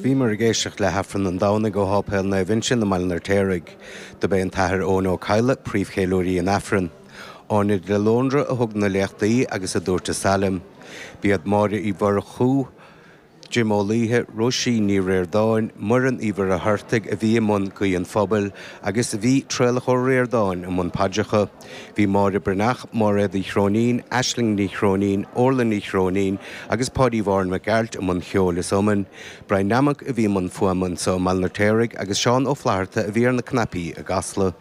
Bhíomar ag éisteacht le hAifreann an Domhnaigh ó Sháipéal Naomh Uinseann i mBaile an Fheirtéaraigh. Dob é an tAthair Eoghan Ó Cadhla príomhcheiliúraí an Aifrinn. Áine de Lóndra a thug na léachtaí agus a dúirt an salm. B'iad Máire Uí Mhurchú, Jim Ó Laoithe, Róisín Ní Riordáin, Muireann Uí Mhuircheartaigh a bhí i mbun Guí an Phobail agus bhí Traolach Ó Riordáin i mbun paidreacha. Bhí Máire Breathnach, Máiréad Uí Chróinín, Aisling Ní Chróinín, Órla Ní Chróinín agus Páidí Mhárthain Mac Gearailt i mbun cheoil is iomann. Brian Nammock a bhí i mbun fuaime anseo i mBaile an Fheirtéaraigh agus Seán Ó Flatharta a bhí ar na cnaipí i gCasla.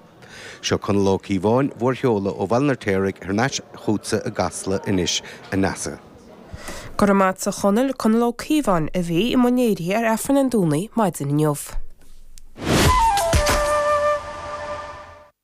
Seo Conall Ó Cíobháin, bhur seoladh ó Bhaile an Fheirtéaraigh thar n-ais chughatsa i gCasla anois a Neasa. Go raibh maith a't a Chonaill, Conall Ó Cíobháin a bhí i mbun léirithe ar Aifreann an Domhnaigh maidin inniu.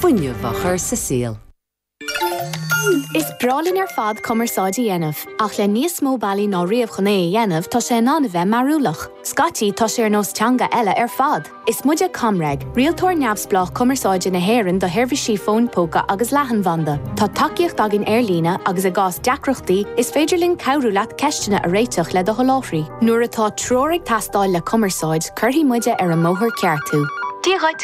fuinneamh a chur sa saol. Is breá linn ar fad cumarsáid a dhéanamh, ach le níos mó bealaí ná riamh chun é a dhéanamh tá sé in ann a bheith mearúlach. Scaití tá sé ar nós teanga eile ar fad! Is muide ComReg, rialtóir neamhspleách cumarsáide na hÉireann do sheirbhísí fóin póca agus leathanbhanda. Tá tacaíocht againn ar líne agus i gcás deacrachtaí is féidir linn cabhrú leat ceisteanna a réiteach le do sholáthraí. Nuair atá treoir ag teastáil le cumarsáid cuirfidh muide ar an mbóthar ceart thú. Dia dhuit!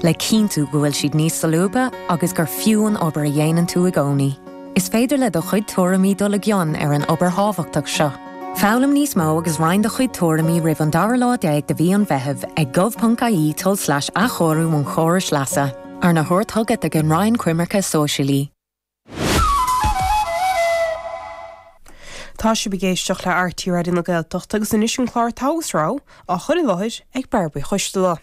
le cinntiú go bhfuil siad níos solúbtha agus gur fiú an obair a dhéanann tú i gcónaí. Is féidir le do chuid tuairimí dul i gcion ar an obair thábhachtach seo. Foghlaim níos mó agus roinn do chuid tuairimí roimh an dara lá déag de mhí an Mheithimh ag gov.ie tulslais athchóiriú an chórais leasa, arna thabhairt chugat ag an Roinn Coimirce Sóisialaí. Tá sibh ag éisteacht le RTÉ Raidió na Gaeltachta agus anois an clár Togha agus Rogha á chur i láthair ag Barb Uí Choisdealbha.